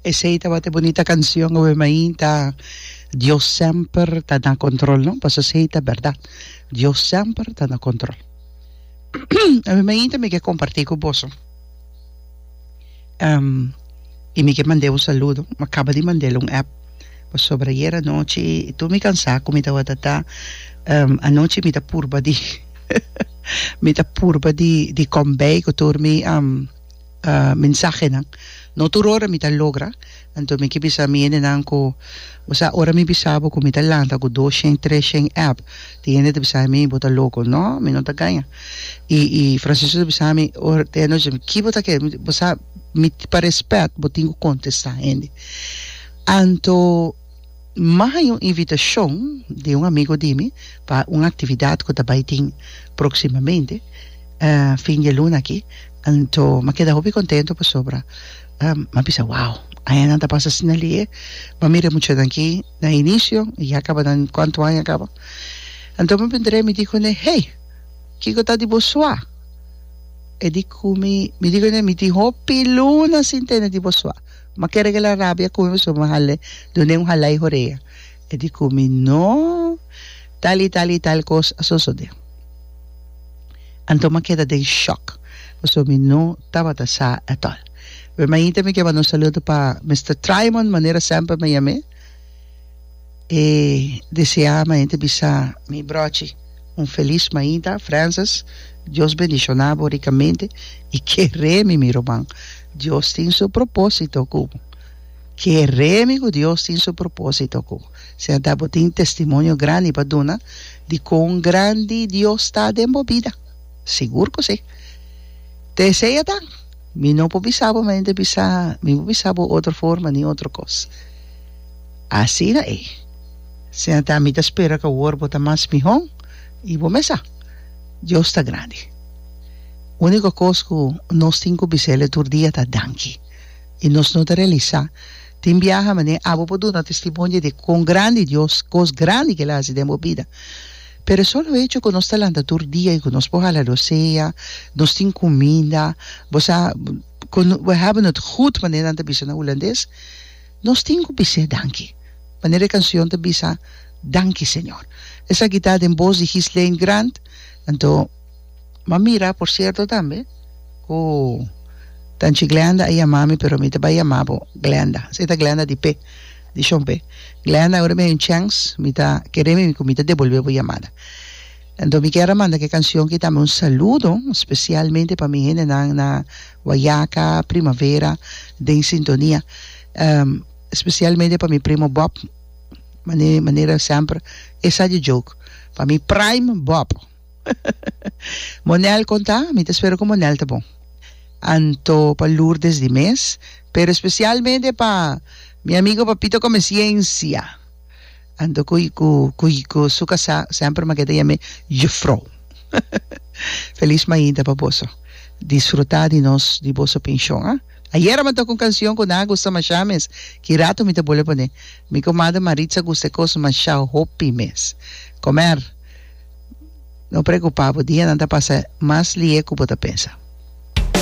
Esei tabata e bunita canción awe main ta Dios semper ta na control no pasobra esei ta berdad Dios semper ta na control awe main ta mi ke comparti cu boso y mi ke mande un saludo mi a caba di mandel un app pasobra ayer anochi y tur mi cansa cu mi tabata ta anochi mi ta purba di mi ta purba di di conbey cu tur mi mensahenan. No tur ora mi ta logra, anto mi ke bisa mi hendenan ku, Bo sa ora mi bisa bo ku mi ta lanta ku dos shen, tres shen app, tin hende ta bisa mi, Bo ta loko. No, mi no ta gaña. I i Francisco ta bisa mi, ora te anochi, Ki bo ta kere? Mi ta, Bo sa, mi, pa rèspèt bo tin ku kontestá hende. Anto. Maha un invitashon di un amigo di mi pa un aktividat ku ta bai tin próksimamente fin di e luna aki anto m'a keda hopi kontentu pasobra m'a bisa wou aña nan ta pasa asina lihe m'a mira e muchanan aki na inisio i ya kaba nan kuantu aña kaba anto mi bin traha i mi di kuné hey kiko ta di bo sua e di ku mi mi di kuné mi tin hopi luna sin tende di bo sua. Ma kere ke la rabia kumi pasobra mi hale dune un halai horea e di kumi no tal i tal i tal kos a sosode. Anto ma keda den shock pasobra mi no tabata sa at all. Bai mainta mi ke manda un saludo pa Mister Trymon manera semper mi yam'e. e deseá ma e hende bisa mi brochi un felis mainta Frances Dios bendishoná bo rikamente i ke remi mi ruman Dios tin su propósito ku bo ke remi ku Dios tin su propósito ku bo siñata bo tin testimonio grandi pa duna di kon grandi Dios ta den bo bida sigur ku si te siñata Mi no por bisa bo, mi ta bisa, mi por bisa bo otro forma ni otro kos. Asina ei. Asina ta, mi ta spera ku awor bo ta mas mihó i bo mesa. Dios ta grandi. Úniko kos ku nos tin ku bis'El tur dia ta danki. I nos no ta realisá, tin biaha manera abo por duna testimonio di kon grandi Dios, kos grandi ku El a hasi den bo bida. Pero solo hecho cu nos ta lanta tur dia y cu nos por hala lo sea, nos tin cuminda, bo sa, we hebben het goed manera nan ta bisa na Hulandes, nos tin cu bis'e danki. Manera e cancion ta bisa, Danki Señor. Esaki ta den boz di Ghislaine Grant, anto. M'a mira, por cierto tambe, cu Tanchi Glenda a yama mi pero mi ta bay yama bo Glenda. Asina ta Glenda di pe. Dishon p'e. Glenda, Ora mi hay un chèns, mi ta kere mi ku mi ta debolbé bo yamada. Anto mi kier a manda ke kansion ki tambe un saludo spesialmente pa mi hendenan na Wayaka, Primavera, den sintonia. Spesialmente pa mi primo Bob, manera semper, esa di joke, pa mi prime Bob. Monel con ta? Mi ta spera cu Monel ta bon. Anto pa Lourdes di mes, pero especialmente pa mi amigo Papito Comesiencia. Anto cu cu cu cu su casa semper make ta yam'e Juffrouw. Feliz mainta pa boso. Disfruta di nos di boso pension ah. Ayera mi toca un cancion cu nan a gusta masha mes. Ki rato mi ta bole pone. Mi comadre Maritza gusta e cos masha hopi mes. Comer. No preocupa bo, dianan ta pasa mas lihe cu bo ta pensa.